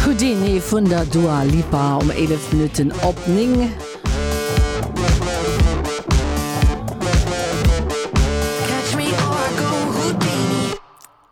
Houdini vun der Dua Lipa um 11 Minutten op 9.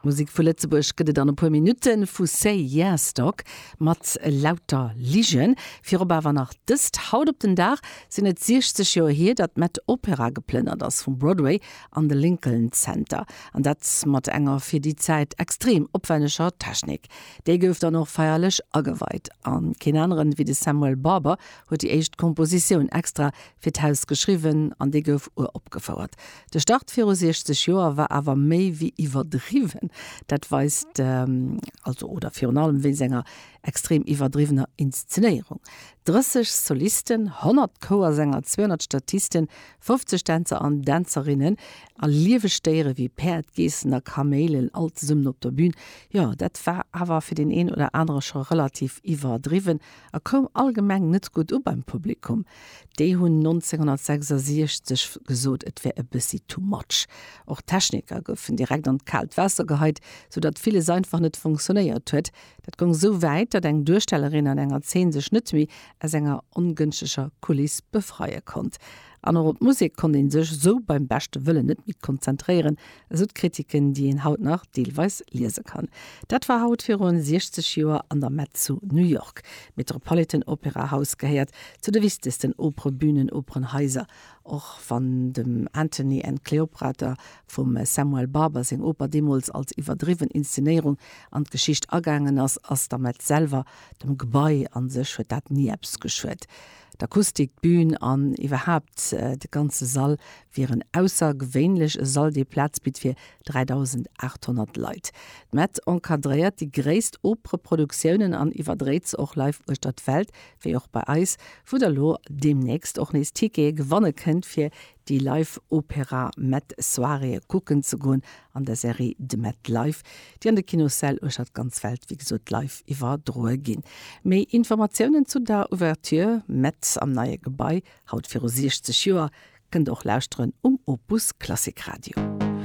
Musek vu Lëtzebuerg gëtt et an e puer Minutten vu Say Yes Dog mat Lauter Ligen. Virop awer nach dëst, Haut op den Dag sinn et 60 Joer hier, datt Matt Opera geplënnert ass vum Broadway an de Lincoln Center, an dat mat enger fir déi Zäit extrem opwenneger Technik. Dee gouf dann och feierlech ageweit, a keen aneren ewéi de Samuel Barber huet déi éischt Kompositioun extra fir d'Haus geschriwwen an dee gouf uropgefouert. De Start viru 60 Joer war awer méi ewéi iwwerdriwwen, dat weist also oder virun allem wéinst enger extrem iwwerdriwwener Inszenéierung, 30 Solisten, 100 Chouersänger, 200 Statisten, 50 Dänzer an Dänzerinnen a lieweg Déiere wéi Päerd, Geessen a Kaméilen all zesummen op der Bün, jo, dat war awer fir deen een oder anere scho relativ iwwerdriwwen a koum allgemeng net gutt u beim Publikum. Déi hunn 1966 gesot, et wär e bëssi too much. Och d'Techniker goufen direkt an d'kaalt Waasser geheit, sou datt villes einfach net funktionéiert huet. Dat goung sou wäit, datt eng Duerstellerin an enger Zeen sech net méi aus enger ongënschtlecher Kuliss befreie konnt. An och op d'Musek konnt ee sech esou beim beschte Wëllen net méi konzentréieren, esou d'Kritiken, déi een haut nach deelweis liese kann. Dat war haut viru 60 Joer an der Met zu New York. D'Metropolitan Opera House gehéiert zu de wichtegsten Operebünen, Operenhaiser. Och wann dem Antony and Cleopatra vum Samuel Barber seng Oper deemools als iwwerdriwwen Inszenéierung an d'Geschicht agaangen ass, ass der Met selwer Dem Gebai a sech huet dat ni eppes geschuet. D'Akustik, d'Bün an iwwerhaapt de ganze Sall wieren aussergewéinlech, e Sall, dee Plaz bitt fir 3.800 Leit. D'Mett encadréiert déi gréisst Opereproduktioune an iwwerdréit se och live uechter d'Welt, wéi och bei eis, wou der lo deemnächst och nees Tickete gewanne kënnt fir Déi Live Opéra Met Soirée kucken ze goen an der Serie De Met Live, déi an de Kinossäll uechter d'ganz Welt, wéi gesot, live iwwerdroe ginn. Méi Informatiounen zu der Ouverture Met am neie Gebai, haut viru 60 Joer, kënnt der och lauschteren um Opus Klassik Radio.